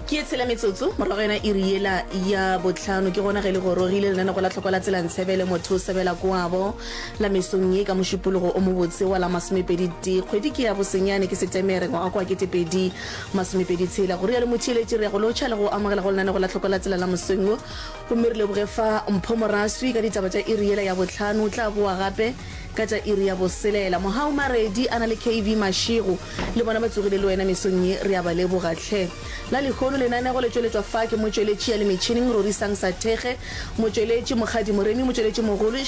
ke e tshela metsotso morago yona e riela ya botlhano ke gona ge le gorogile lenane go la tlhoko la tsela ntshebele motho o sebela koabo la mesong ye ka mošupologo o mobotse wa la masomepedi te kgwedi ke ya bosenyane ke setemere ngwaga kwa ketepedi masomepedi tshela go rialo motheeletši re ya go lotšha le go amogela go lenane go la tlhoko la tsela la mosweng wo Gomme re leboge fa mpho moraswi ka ditaba tša iri yela ya bohlano. O tla boa gape ka tša iri ya boselela. Mohau Maredi a na le KV Mašego le bona ba tsogile le wena mesong ye. Re a ba leboga tlhe. La lehono lenanego le tšweletšwa fa ke motšweletši ya le metšhining Rorisang Sathekge, motšweletši Mokgadi Moremi, motšweletši mogolo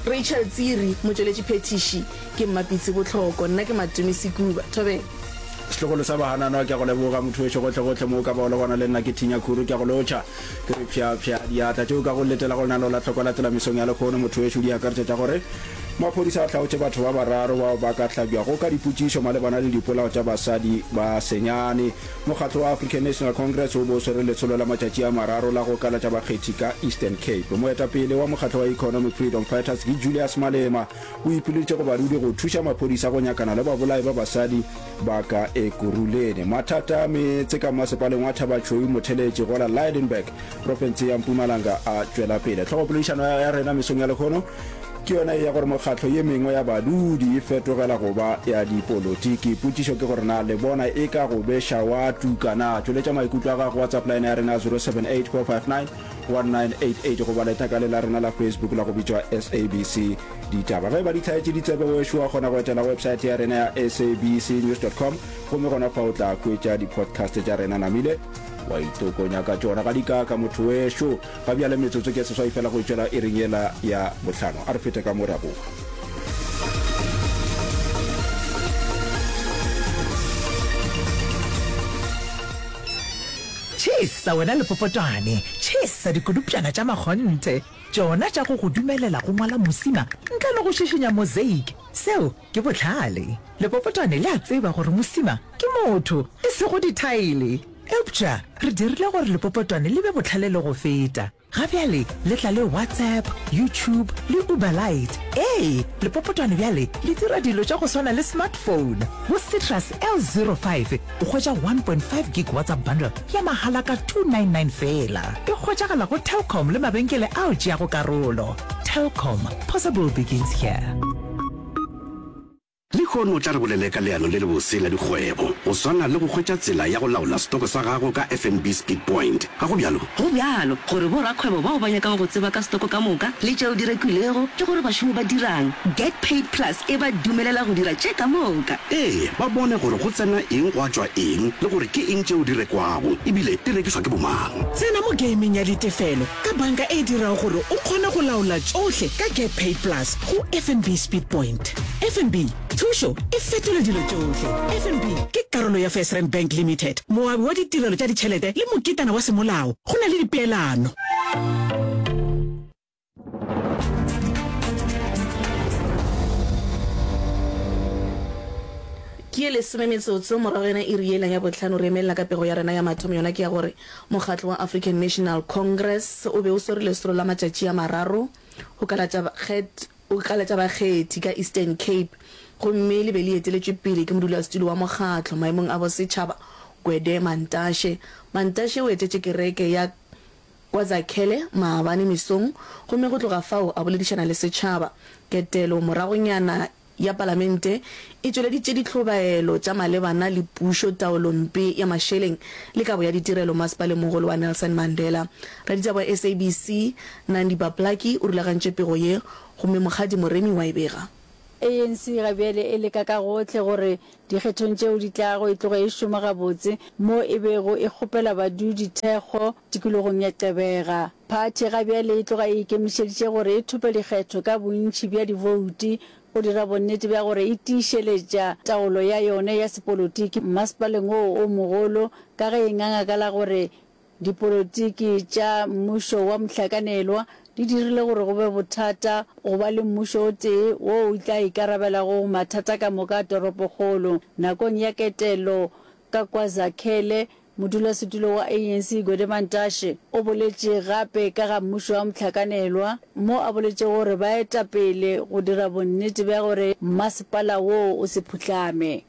Rachel Tsiri, motšweletši phethiši Ke mmapitsi bohloko, nna ke matumi sekuba, thobeng. Setlogolo sa bahananwa ke a go leboga mothoweso gotlegotle mo o ka ba o le gona le nna ke thinya khuru ke a go lotšha ke re phyaphya diatla tšeo ka go letela go lenaneo la tlhoko la tselamisong ya lekgono mothoweso di akaretša tša gore maphodisa a hlaotše batho ba bararo bao ba ka hlabjago ka dipotšišo malebana le dipolao tša basadi ba senyane mokgatlo wa African National Congress o bo swere letsholo la matšatši a mararo la go kalatša bakgethi ka Eastern Cape moetapele wa mokgatlo wa Economic Freedom Fighters ke Julius Malema o ipileditše go barwedi go thuša maphodisa go nyakana le babolai ba basadi ba ka Ekurhuleni. Mathata a meetse ka mmasepaleng wa Thabatšhweu Motheletše go la Lydenburg, profense ya Mpumalanga a tšwela pele. Tlhogopoledišano ya rena mesong ya lekgono ke yona e ya gore mokgatlo ye mengwe ya badudi e fetogela go ba ya dipolotiki. Potšišo ke gore na le bona e ka go beša wa tuka na? Tšweletša maikutlo a gago WhatsApp line ya rena 078 459 1988 goba leta ka le la rena la facebook la go bitšwa sabc ditaba ge ba di tlhaetše ditsebe wešo wa kgona go etela website ya rena ya sabc news com gomme gona fa o tla kwetša di-podcast tša rena namile wa itokonya ka tšona ga dikaka motho wešo ga bjale metsotso ke seswai fela go itšwela e reng yela ya botlhano a re fete ka mo raboga Tšhis sa wena lepopotwane, tšhis sa dikodupšana tša makgonthe, tšona tša go go dumelela go ngwala mosima ntle le go šišinya mosaic. Seo ke bohlale. Lepopotwane le a tseba gore mosima ke motho, e sego dithaele. Eupša re dirile gore lepopotwane le be bohlale le go feta. Ga bjale le tla le WhatsApp, YouTube le Uber Lite. Ee, lepopotwane bjale le dira dilo tša go swana le smartphone. Go Citrus L05 o hwetša 1.5 gig WhatsApp bundle ya mahala ka 299 feela. E hwetšagala go Telkom le mabenkele ao tšeago karolo. Telkom, possible begins here. Lehono o tla re bolele ka leano le lebose la dikgwebo, go swana le go hwetša tsela ya go laola setoko sa gago ka FNB Speed Point. Ga go bjalo? Go bjalo, gore borakgwebo bao ba nyakago go tseba ka setoko ka moka le tšeo di rekilwego le gore bašomi ba dirang, Get Paid Plus e ba dumelela go dira tše ka moka. Ee, ba bone gore go tsena eng gwa tšwa eng le gore ke eng tšeo di rekwago e bile di rekišwa ke bomang. Tsena mo geimeng ya ditefelo ka banka e dirago gore o kgone go laola tšohle ka GetPaid Plus go FNB Speed Point. FNB, thušo e fetola dilo tšohle. FNB ke karolo ya FirstRand Bank Limited, moabi wa ditirelo tša ditšhelete le moketana wa semolao. Go na le dipeelano. Ke ye lesome metsotso morago yona iri yela ya botlhano re emelela ka pego ya rena ya mathomo yona ke ya gore Mokgatlo wa African National Congress o be o swere lesolo la matšatši a mararo go kalatša kget go kalatša bakgethi ka Eastern Cape gomme le be le eteletšwe pele ke modulasetulo wa mokgatlo maemong a bosetšhaba Gwede Mantashe. Mantashe o etetše kereke ya kwa Zakhele maabane mesong gomme go tloga fao a boledišana le setšhaba. Ketelo moragonyana ya Palamente e tšweleditše dihlobaelo tša malebana le pušo, taolompe ya mašeleng le kabo ya ditirelo Masepalengmogolo wa Nelson Mandela. Raditaba wa SABC, Nandi Baplaki o rulagantše pego ye gomme Mokgadi Moremi wa e bega. ANC ga bjale e leka ka gohle gore Dikgethong tšeo di tlago e tloga e šoma gabotse mo e bego e kgopela badudi thekgo tikologong ya Gqeberha. Phathi ga bjale e tloga e ikemišeditše gore e thope dikgetho ka bontši bja dibouti go dira bonnete bja gore e tiišeletša taolo ya yone ya sepolotiki mmasepaleng woo o mogolo ka ge e nganga ka la gore Dipolotiki tša mmušo wa mohlakanelwa di dirile gore go be bothata go ba le mmušo o tee wo o tla ikarabelago go mathata ka moka a toropokgolo. Nakong ya ketelo ka kwa Zakhele, modulasetulo wa ANC Gwede Mantashe o boletše gape ka ga mmušo wa mohlakanelwa mo a boletšego gore ba eta pele go dira bonnete bja gore mmasepala woo o se phuhlame.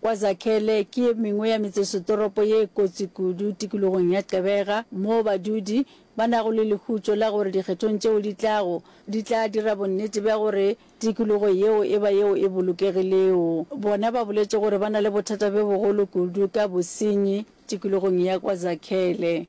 Kwa Zakhele ke ye mengwe ya metsesetoropo ye kotsi kudu tikologong ya Gqeberha moo badudi ba nago le lehutšo la gore dikgethong tšeo di tlago di tla dira bonnete bja gore tikologo yeo e ba yeo e bolokegilego. Bona ba boletše gore ba na le bothata bjo bogolo kudu ka bosenyi tikologong ya kwa Zakhele.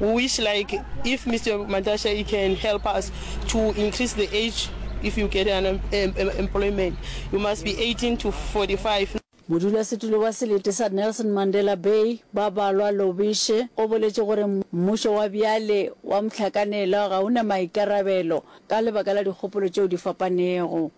We wish like if Mr. Mantashe you can help us to increase the age if you get an employment. You must be 18 to 45. Modulasetulo wa selete sa Nelson Mandela Bay, Babalwa Lobishe, o boletše gore mmušo wa bjale wa mohlakanelwa ga o na maikarabelo ka lebaka la dikgopolo tšeo di fapanego.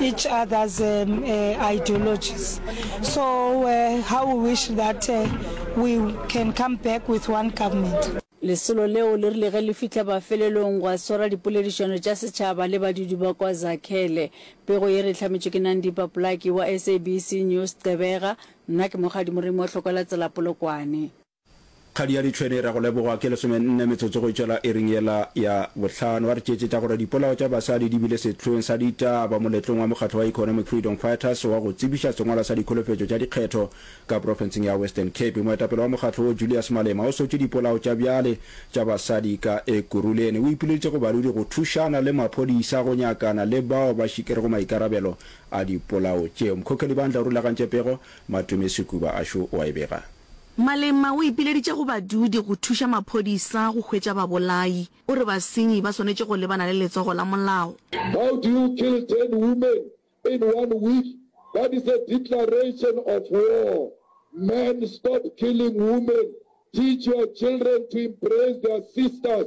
each other's um, uh, ideologies. So uh, how we wish that uh, we can come back with one government. lesolo leo le rile ge le fihla mafelelong gwa swara dipoledišano tša setšhaba le badudi ba kwa zakhele pego ye re hlametšwe ke nandipa polaki wa sabc news qebega nna ke mogadimorimo hlokwela tsela polokwane Kgadi ya Ditšhwene e ra go lebogwa ke lesomenne metsotso go itšela iring yela ya bohlano. A re tšeetšetša gore dipolao tša basadi di bile sehlweng sa ditaba moletlong wa mokgatlo wa Economic Freedom Fighters wa go tsebiša sengwalwa sa dikholofetšo tša dikgetho ka profenseng ya Western Cape. Moetapele wa mokgatlo wo Julius Malema o sotše dipolao tša bjale tša basadi ka Ekurhuleni. O ipoleditše go baruri go thušana le maphodisa go nyakana le bao ba šikerego maikarabelo a dipolao tšeo. Mkhokheli Bandla o rulagantše pego, Matome Sekuba a šo o a e bega. Malema o ipileditše go badudi go thuša maphodisa go hwetša babolai. O re basenyi ba swanetše go lebana le letsogo la molao. How do you kill ten women in one week, that is a declaration of war, men stop killing women, teach your children to embrace their sisters,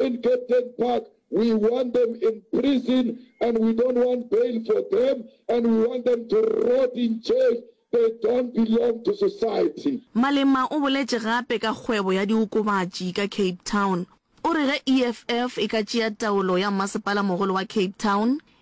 in Captain Park, we want them in prison and we don't want bail for them and we want them to rot in jail, they don't belong to society. Malema o boletše gape ka kgwebo ya diokobatši ka Cape Town. O re ge EFF e ka tšea taolo ya mmasepala mogolo wa Cape Town,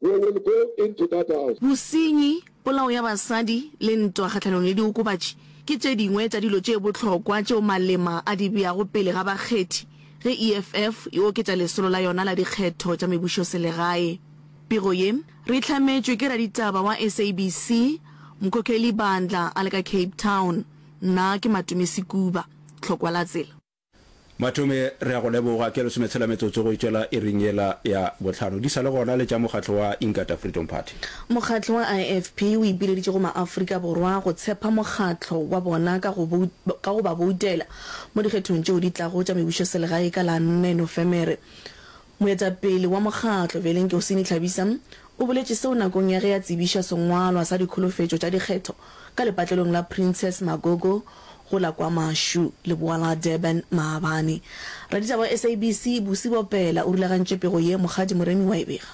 We will go into that house. Bosenyi, polao ya basadi le ntwa kgahlanong le diokobatši ke tše dingwe tša dilo tše bohlokwa tšeo Malema a di beago pele ga bakgethi ge EFF e oketša lesolo la yona la dikgetho tša mebušoselegae. Pego ye re e hlametšwe ke raditaba wa SABC, Mkhokheli Bandla a le ka Cape Town. Nna ke Matumi Sekuba. Tlhokwa la tsela. Mathome, re a go leboga. Ke lesometshela metsotso go e tšwela iring yela ya bohlano. Di sa le gona le tša mokgatlo wa Inkatha Freedom Party. Mokgatlo wa IFP o ipileditše go maAfrika Borwa go tshepa mokgatlo wa bona ka go ka go ba boutela mo dikgethong tšeo di tlago tša mebušoselegae ka la nne Nofemere. Moetapele wa mokgatlo bjale Nkosini Tlhabisa o boletše seo nakong ya ge a tsebiša sengwalwa sa dikholofetšo tša dikgetho ka lepatlelong la Princess Magogo go la KwaMashu, leboa la Durban, maabane. Raditaba wa SABC Busi Bopela o rulagantše pego ye, Mokgadi Moremi wa e bega.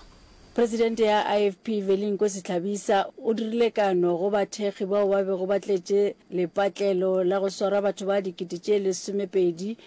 Presidente ya IFP bjale Nkosi Tlhabisa o dirile kano go bathekgi bao ba bego ba tletše lepatlelo la go swara batho ba dikete tše lesomepedi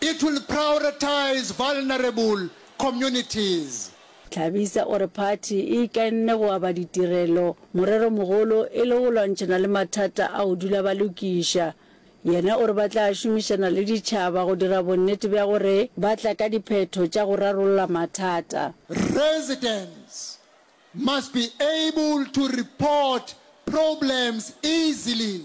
It will prioritize vulnerable communities. Thabisa o re phathi e ikainne go aba ditirelo, moreromogolo e le go lwantšhana le mathata a go dula ba lokiša. Yena o re ba tla šomišana le ditšhaba go dira bonnete bja gore ba tla ka diphetho tša go rarolla mathata. Residents must be able to report problems easily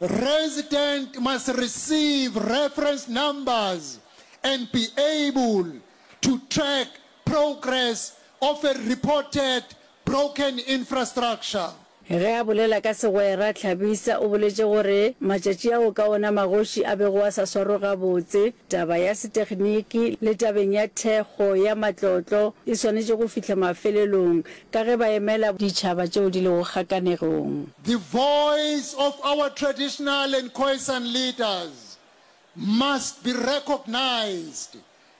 Resident must receive reference numbers and be able to track progress of a reported broken infrastructure. Ge a bolela ka segwera, Tlhabisa o boletše gore matšatši ao ka ona magoši a bego a sa swarwe gabotse, taba ya setekniki le tabeng ya thekgo ya matlotlo e swanetše go fihla mafelelong Ka ge ba emela ditšhaba tšeo di lego kgakanegong. The voice of our traditional and Khoisan leaders must be recognized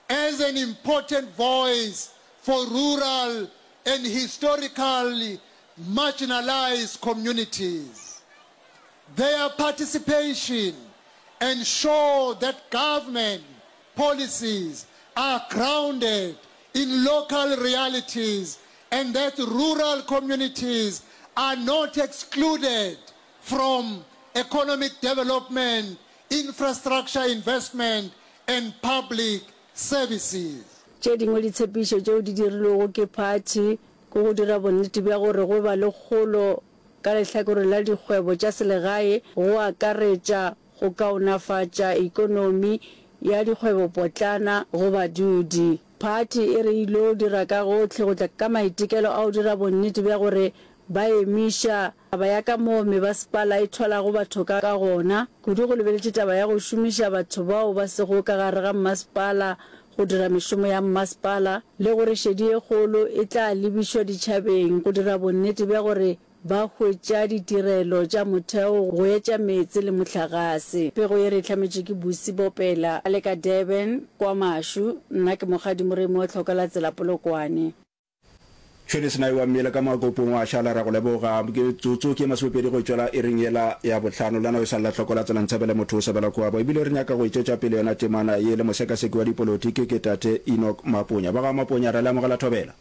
as an important voice for rural and historically marginalized communities. Their participation ensure that government policies are grounded in local realities and that rural communities are not excluded from economic development, infrastructure investment and public services. Tše dingwe ditshepišo tšeo di dirilwego ke phathi ke go dira bonnete bja gore go ba le kgolo ka lehlakoreng la dikgwebo tša selegae go akaretša go kaonafatša ekonomi ya dikgwebopotlana go badudi. Phathi e re ilo dira ka gohle go tla ka maitekelo a go dira bonnete bja gore ba emiša taba ya ka moo mebasepala e thwalago batho ka gona, kudu go lebeletše taba ya go šomiša batho bao ba sego ka gare ga mmasepala go dira mešomo ya mmasepala, le gore šedi e kgolo e tla lebišwa ditšhabeng go dira bonnete bja gore Ba hwetša ditirelo tša motheo go etša meetse le mohlagase. Pego ye re e hlametšwe ke Busi Bopela a le ka Durban, kwa Mashu. Nna ke Mokgadi Moremi wa Tlhokelatsela Polokwane. Tšhwene Senayi wa Mmele ka Makopong wa šala, re a go leboga. Metsotso ke ye masomepedi go tšwela ering yela ya bohlano. Lena o sa lla Tlhokelatsela Ntshabele motho o sebela Koabo. Ebile re nyaka go e tšwetša pele yona temana ye le mosekaseki wa dipolotiki ke Tate Enoch Maponya. Ba ga Maponya ra le amogela thobela.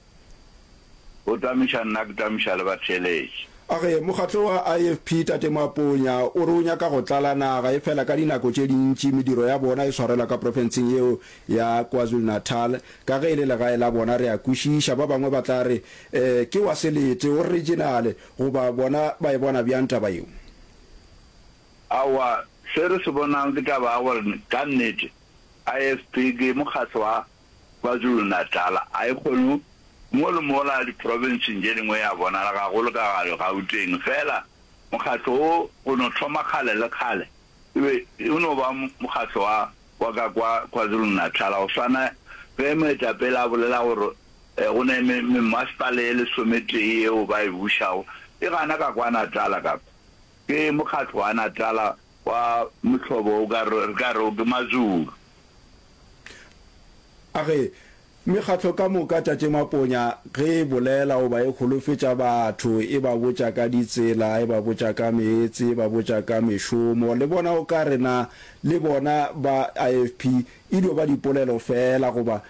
O tamiša nna ke tamiša le batheeletši. Age, mokgatlo wa IFP Tate Moaponya o re o nyaka go tlala naga efela ka dinako tše dintši mediro ya bona e swarelwa ka profenseng yeo ya KwaZulu-Natal ka ge e le legae la bona. Re a kwešiša ba bangwe ba tla re, Eh, ke wa selete, o riginale, goba bona ba e bona bjang taba yeo? Aowa, se re se bonang ke taba ya gore ka nnete IFP ke mokgatlo wa KwaZulu-Natal a e kgone mo le mola diprofenseng tše dingwe ya bonala gagolo ka gare Gauteng fela mokgatlo wo go no thoma kgale le kgale e be e no ba mokgatlo wa wa ka kwa KwaZulu-Natal go swana ge moetapele a bolela gore go ne mmasepale e lesometee yeo ba e bušago e gana ka kwa Natal ka kwa ke mokgatlo wa Natal Wa mohlobo o ka re, re ka re o ke Mazulu. A ge mekgatlo ka moka Tate Maponya ge e bolela goba e holofetša batho e ba botša ka ditsela, e ba botša ka meetse, e ba botša ka mešomo, le bona o ka re na le bona ba IFP e dio ba dipolelo feela goba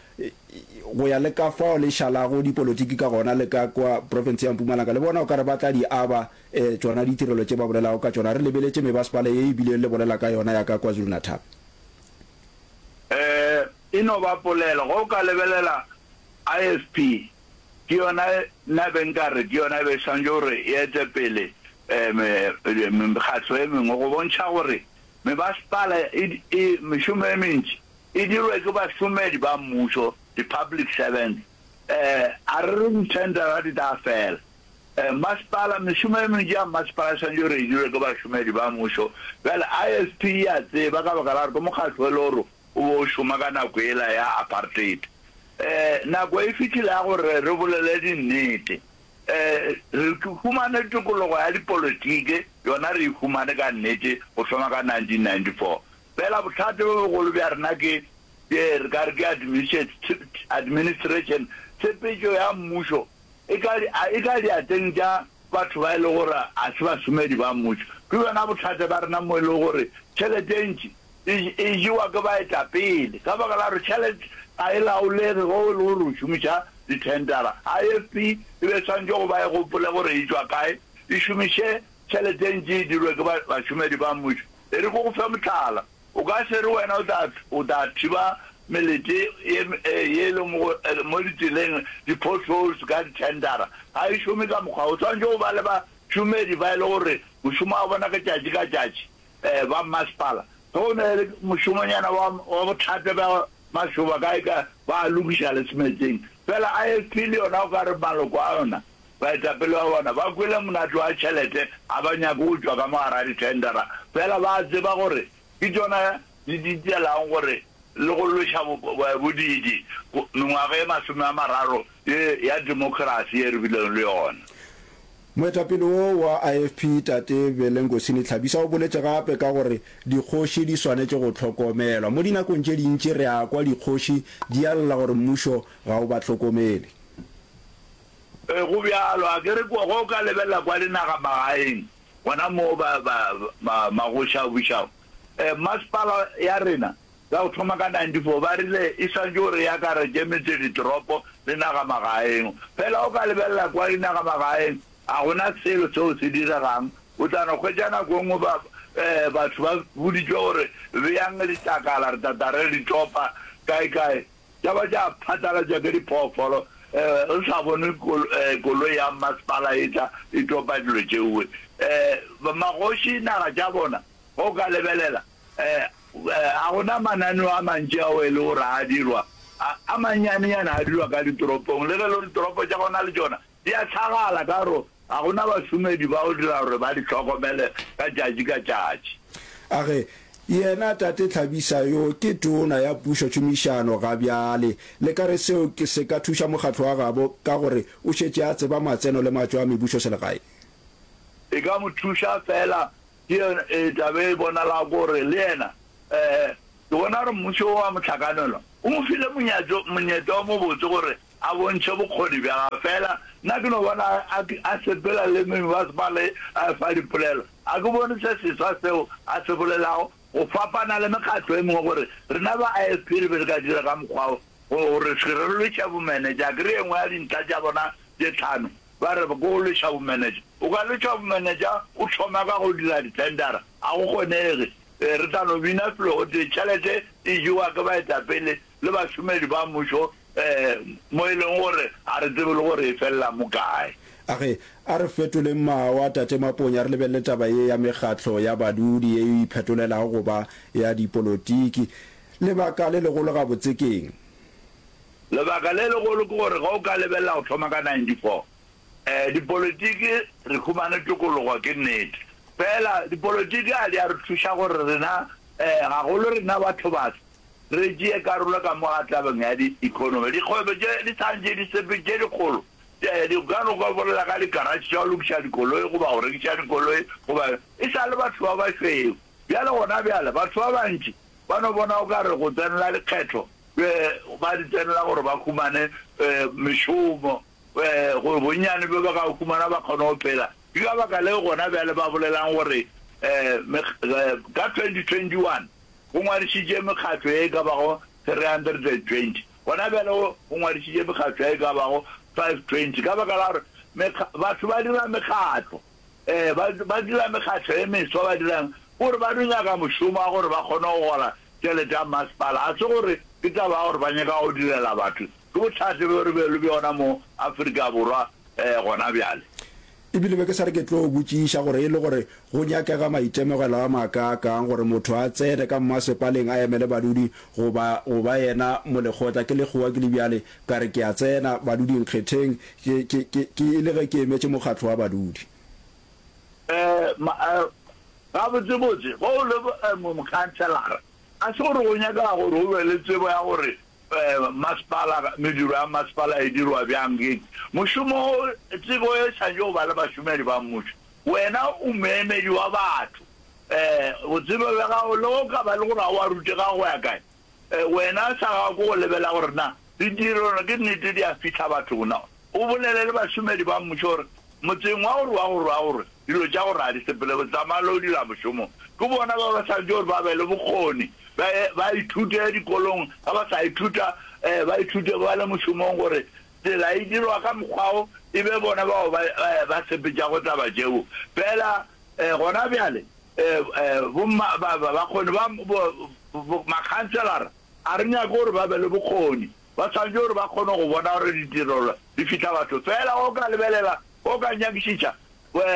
go ya le ka fao le šalago dipolotiki ka gona le ka kwa profenseng ya Mpumalanga le bona o ka re ba tla di aba E, tšona ditirelo tše ba bolelago ka tšona, re lebeletše mebasepala ye e bilego le bolela ka yona ya ka KwaZulu-Natal. E, e no ba polelo. Ge o ka lebelela IFP, ke yona nna be nka re ke yona e be e swanetše gore e ete pele e, mekgatlo e mengwe, go bontšha gore mebasepala e, e, mešomo e mentši e dirwe ke bašomedi ba mmušo, di-public servants. E, a re re di-tender-a di tla fela. Masepala, Mešomo e mentši ya masepala e swanetše gore e dirwe ke bašomedi ba mmušo. Bjale, ISP e a tseba, ka baka la gore ke mokgatlo o e lego gore o be o šoma ka nako yela ya apartheid. Nako e fihlile ya gore re bolele dinnete. Re humane tokologo ya dipolotiki, yona re e humane ka nnete go thoma ka 1994. Feela bothata bjo bogolo bja rena ke, re ka re ke administration, tshepetšo ya mmušo. e ka di, a e ka diateng tša batho ba e le gore ga se bašomedi ba mmušo. Ke bjona bothata bja rena mo e lego gore tšhelete e ntši e, e jewa ke baetapele ka baka la gore tšhelete ga e laolege ge e le gore o šomiša dithendara. IFP e be e swanetše go ba e gopole gore e tšwa kae, e šomiše tšhelete e ntši e dirwe ke ba, bašomedi ba mmušo. E re ke go fe mohlala. O ka se re wena o tla thiba melete ye e lego mo ditseleng, di-potholes, ka dithendara. Ga e šome ka mokgwa wo. O swanetše go ba le bašomedi ba e lego gore mošomo wa bona ke tšatši ka tšatši, ba mmasepala. Ge o na le mošomonyana wa bothata bja mašoba kae kae, ba a lokiša le semeetseng. Fela IFP le yona o ka re maloko a yona, Baetapele ba bona ba kwele monate wa tšhelete ga ba nyake go tšwa ka mo gare ga dithendara, fela ba a tseba gore ke tšona di ditelang gore le go lweša bodiidi mengwaga ye masome a mararo ye ya democracy ye re bilego le yona. Moetapele wo wa IFP, Tate Belenkosini Tlhabisa o boletše gape ka gore dikgoši di swanetše go hlokomelwa. Mo dinakong tše dintši re a kwa dikgoši di a lla gore mmušo ga o ba hlokomele. Ee, go bjalo. A ke re kua ge o ka lebelela kua dinagamagaeng, gona moo ba, ba, ba, magoši a bušago, ee, masepala ya rena, ka go thoma ka 94, ba rile, E santše o re akaretše metseditoropo le nagamagaeng. Feela o ka lebelela kua dinagamagaeng, ga go na selo seo se diregang. O tla no hwetša nako e nngwe ba, ee, batho ba boditšwe gore, Beyang litlakala, re tla tla re li topa kae-kae. Tša ba tša phatlalatšwa ke diphoofolo, re sa bone koloi ya mmasepala e tla e topa dilo tšeo. Magoši naga tša bona, ge o ka lebelela, ga go na mananeo a mantši ao e le gore a dirwa, a mannyanenyane a dirwa ka ditoropong, le ge e le gore ditoropo tša gona le tšona Di a hlagala ka gore ga go na bašomedi ba go dira gore ba di hlokomele ka tšatši ka tšatši. A re, Yena Tate Tlhabisa yo ke Tona ya Pušo Tšhomišano ga bjale. Le ka re seo se ka thuša mokgatlo wa gabo ka gore o šetše a tseba matseno le matšo a mebušoselegae? E ka mo thuša feela. Ke yona e tla be e bonalago gore le yena. Ke bona gore mmušo wo wa mohlakanelwa o mo file monyetla o mobotse gore A bontšhe bokgoni bja gagwe. Feela nna ke no bona a, a sepela le meng ba ba le fa dipolelo. A ke bone se seswa seo a se bolelago, go fapana le mekgatlo e mengwe, gore rena ba IFP re be re ka dira ka mokgwa wo, go, go re se re lweša bomenetša. A ke re ye nngwe ya dintlha tša bona tše tlhano, ba re, ke go lweša bomenetša. O ka lwešwa bomenetša o thoma ka go dira dithendara? A go kgonege. Re tla no bina felo gotee, tšhelete e jewa ke baetapele le bašomedi ba mmušo mo e lego gore ga re tsebe le gore e felela mo kae. A re, A re fetoleng mawa, Tate Maponya, re lebelele taba ye ya mekgatlo ya badudi ye e iphetolelago go ba ya dipolotiki. Lebaka le legolo gabotse ke'ng? Lebaka le legolo ke gore ge o ka lebelela go thoma ka 94, dipolotiki re humane tokologo, ke nnete. Feela dipolotiki ga di a re thuša gore rena, gagolo rena bathobaso, Re tšee karolo ka mo ga tabeng ya diekhonomi. Dikgwebo tše di sa ntše di sepe tše dikgolo di ka no gobolela ka dikaratšhe tša go lokiša dikoloi goba go rekiša dikoloi goba e sa le batho ba bašweu. Bjale gona bjale batho ba bantši ba no bona o ka re go tsenela dikgetho ba di tsenela gore ba humane mešomo gore bonnyane bjo ba ka o humana ba kgone go phela. Ke ka baka leo gona bjale ba bolelang gore ka 2021 go ngwadišitše mekgatlo ye e ka bago 320. Gona bjale go ngwadišitše mekgatlo ye e ka bago 520 ka baka la gore mekga, batho ba dira mekgatlo, ee, ba, ba dira mekgatlo ye meswa. Ba dira'ng? Ke gore ba do nyaka mošomo wa gore ba kgone go gola tšelete ya mmasepala. Ga se gore ke taba ya gore ba nyaka go direla batho, Ke bohlatse bjo re be le bjona mo Afrika Borwa gona bjale. Ebile be ke sa re ke tlo botšiša gore e le gore go nyakega maitemogelo a makaakang gore motho a tsene ka mmasepaleng a emele badudi goba go ba yena molekgotla. Ke lekgowa ke le bjale ka re ke a tsena badudi-nkgetheng ke e le ge ke emetše mokgatlo wa badudi. Gabotsebotse ge o le mokhanselara ga se gore go nyakega gore o be le tsebo ya gore Masepala, Mediro ya masepala e dirwa bjang? Gate, Mošomo, Tsebo e swanetše go ba le bašomedi ba mmušo. Wena o moemedi wa batho. Botsebe bja gago, le ge o ka ba e le gore ga o a rutega go ya kae, wena sa gago ke go lebelela gore na ditirelo ke nnete di a fihla bathong na. O bolele le bašomedi ba mmušo gore, Motseng wa gore wa go rwa go rwe, dilo tša go raya di sepele, go tsamaya le go dira mošomo. Ke bona ba ba swanetše gore ba be le bokgoni, ba ye ba ithute dikolong, ga ba sa ithuta, ba ithute ba le mošomong gore tsela e dirwa ka mokgwa wo, e be bona bao ba ba sepetšago taba tšeo. Fela gona bjale bomma, ba, ba, bakgoni ba bo, bo, makhanselara a re nyake gore ba be le bokgoni. ba swanetše gore ba kgone go bona gore ditirelo di fihla batho. Feela ge o ka lebelela, o ka nyakišiša,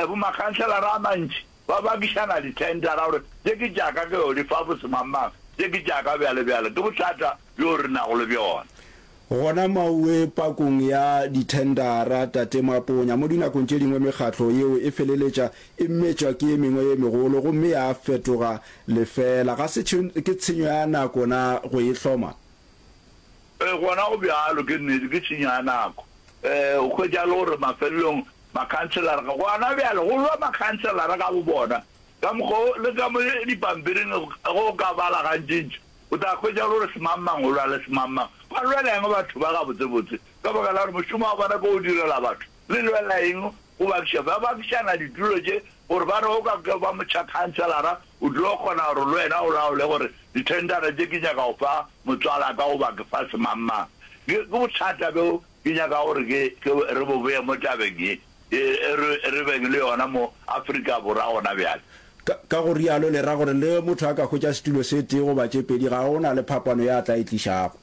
bomakhanselara a mantši ba bakišana dithendara gore tše ke tša ka, ke yo di fa bosemangmang, tše ke tša ka, bjalo bjalo. Ke bothata bjo re nago le bjona. Gona maoe pakong ya dithendara, Tate Maponya, mo dinakong tše dingwe mekgatlo yeo e feleletša e metšwa ke e mengwe ye megolo gomme ya fetoga lefeela. Ga se ke tshenyo ya nako na go e hloma? Ee, gona go bjalo. Ke nnete, ke tšhinya ya nako. Ee, o hwetša e le gore mafelelong makhanselara ga gona bjale go lwa makhanselara ka bobona. Ka mokgwa wo, le ka mo dipampiring ge o ka bala gantšintši, o tla hwetša e le gore semangmang o lwa le semangmang. Ba lwela eng batho ba gabotsebotse? Ka baka la gore mošomo wa bona ke go direla batho. Le lwela eng go bakiša, ba bakišana ditulo tše gore ba re o ka ke ba motšhakhanselara o tlo kgona gore le wena o laole gore dithendara tše ke nyaka go fa motswala ka goba ke fa semangmang. Ke bothata bjo ke nyaka gore ke re bo bee mo tabeng ye e re beng le yona mo Afrika Borwa gona bjale. Ka go rialo le ra gore le ge motho a ka hwetša setulo se tee goba tše pedi ga go na le phapano ya a tla e tlišago.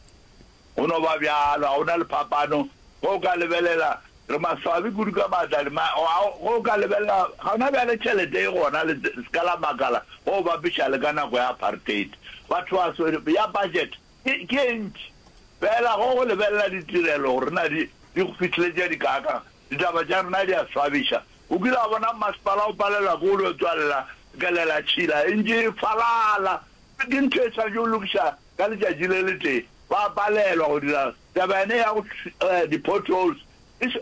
Go no ba bjalo. Ga go na le phapano. Ge o ka lebelela, re maswabi kudu ka maatla. Di, ma, ge o ka lebelela, ga na bjale tšhelete e gona le seka la makala ge o bapiša le ka nako ya apartheid. Batho ba swere, ya budget ke, ke e ntši. Fela ge o lebelela ditirelo gore na di, di go fihleletša dikaakang, ditaba tša rena di a swabiša. O kile wa bona mmasepala o palelwa ke go yo tswalela kelela tšhila e ntše e falala? Ke ntho e swanetše go lokiša ka letšatši le letee ba palelwa go dira taba yane ya go eh, di-potholes.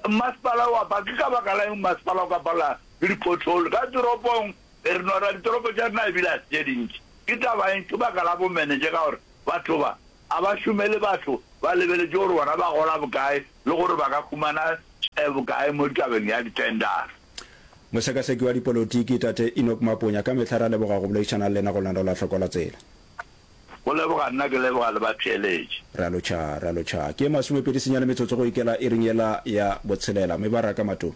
Mmasepala wa ba ke ka baka la eng mmasepala o ka palelwa ke di-pothole ka toropong e re nora ditoropo tša rena ebile a se tše dintši ke taba eng ke baka la bomenetše ka gore batho ba a ba šomele batho ba lebeletše gore bona ba gola bokae le gore ba ka humana eh, bokae mo ditabeng ya ditendara Mosekaseki wa dipolotiki Tate Enoch Maponya ka mehla ra leboga go boledišana le lena go lena la tlhokola tsela. Go leboga nna ke leboga le ba theeletše. Ra lo tšha, ra lo tšha. Ke masomepedi senyane metsotso go ikela iring yela ya botshelela. Mebaraka, Matomi.